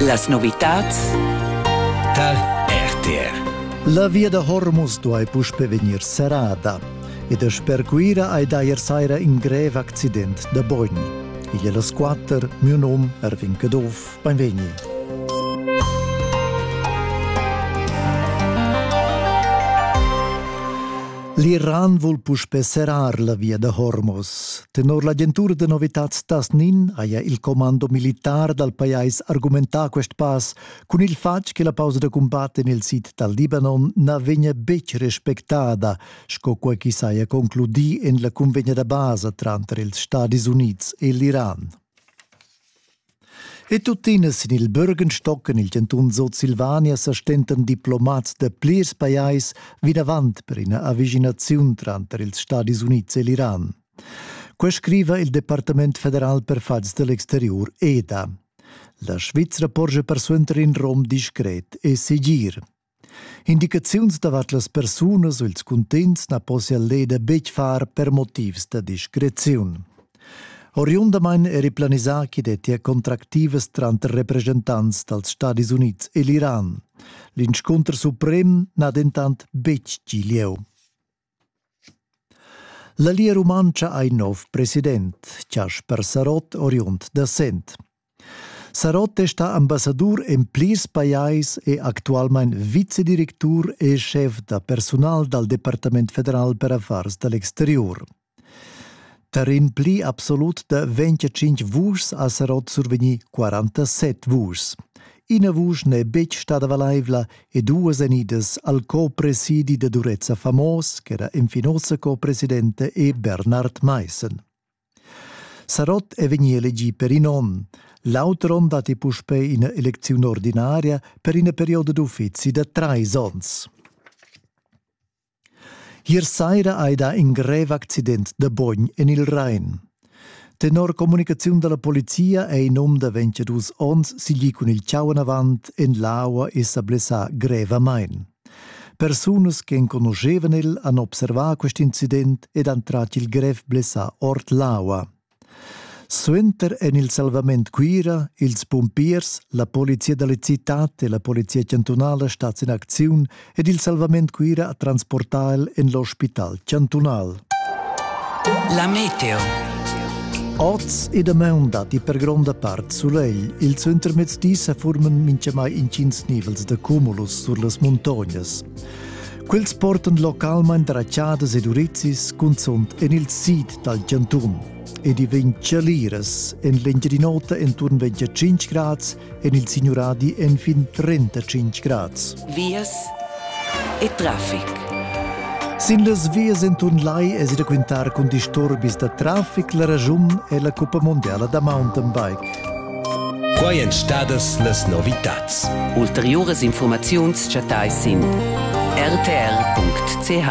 Las novitads tar RTR. La via da Hormus duai puspe vegnir serrada ed er sper Cuira hai dajer saira in grev accident da bogn. Igl è las quatter, mio nom Erwin Caduff. Beinvegni. L'Iran vul puspe serrar la via da Hormuz. Tenor l'agentura da novitads Tasnin haja il commando militar dal pajais argumentà quest pass cun il fatg che la pausa da cumbat en il sid dal Libanon na vegnia betg respectada, sco quai ch'i saja concludì en la cunvegna da basa tranter ils Stadis Unids e l'Iran. E tuttina sin il Bürgenstock en il chantun Sutsilvania sa stentan diplomats da plirs pajais vinavant per ina avischinaziun tranter ils Stadis Unids e l'Iran. Quai scriva il Departament federal per fatgs dell'exterior EDA. La Svizra porscha persuenter in rom discret e segir. Indicaziuns davart las persunas u ils cuntegns na possia l'EDA betg far per motivs da discreziun. Oriundamain eri planisà ch'i dettia contractivas tranter represchentants dals Stadis Unids e l'Iran. L'inscunter suprem n'ha dentant betg gì lieu. La Lia Rumantscha ha in nov president, Chasper Sarott, oriund da Sent. Sarott è stà ambassadur en plirs pajais e actualmain vicedirectur e schef da persunal dal Departament federal per affars da l'exteriur. Per in pli absolut da 25 vuschs ha Serot survegni 47 vuschs. Ina vusch n'è betg stada valaivla e duas enidas al co-presidi da Durezza Famos, ch'era infinosa co-presidente, e Bernard Meissen. Sarot è vegni elegì per in onn. L'auter onn datti puspè ina elecziun ordinaria per ina perioda d'uffizi da trais onns. Ier saira hai dà in grev accident da bogn en il Rain. Tenor communicaziun da la polizia è in um da 22 onns siglì cun il chau enavant en l'aua e sa blessà grevamain. Persunas che enconuschevan el han observà quest incident ed han tratg il grev blessà ord l'aua. Suenter en il salvament Cuira ils pumpiers, la polizia da la citad e la polizia chantunala stats in acziun ed il salvament Cuira ha transportà el en l'ospital chantunal. La meteo. Oz e damaun datti per gronda part sulegl. Il suentermezdi sa forman mintgamai intgins nivels da cumulus sur las muntognas. Quels portan localmain dratschadas ed urizis, cunzunt en il sid dal chantun ed i vegn chaliras en l'Engiadin'Ota enturn 25 grads en il Signuradi en fin 35 grads. Vias e traffic. Sin las vias enturn lai es da quintar cun disturbis da traffic la ragiun è la Cuppa Mondiala da Mountain Bike. Quai èn stadas las novitads. Ulteriuras informaziuns chattais sin rtr.ch.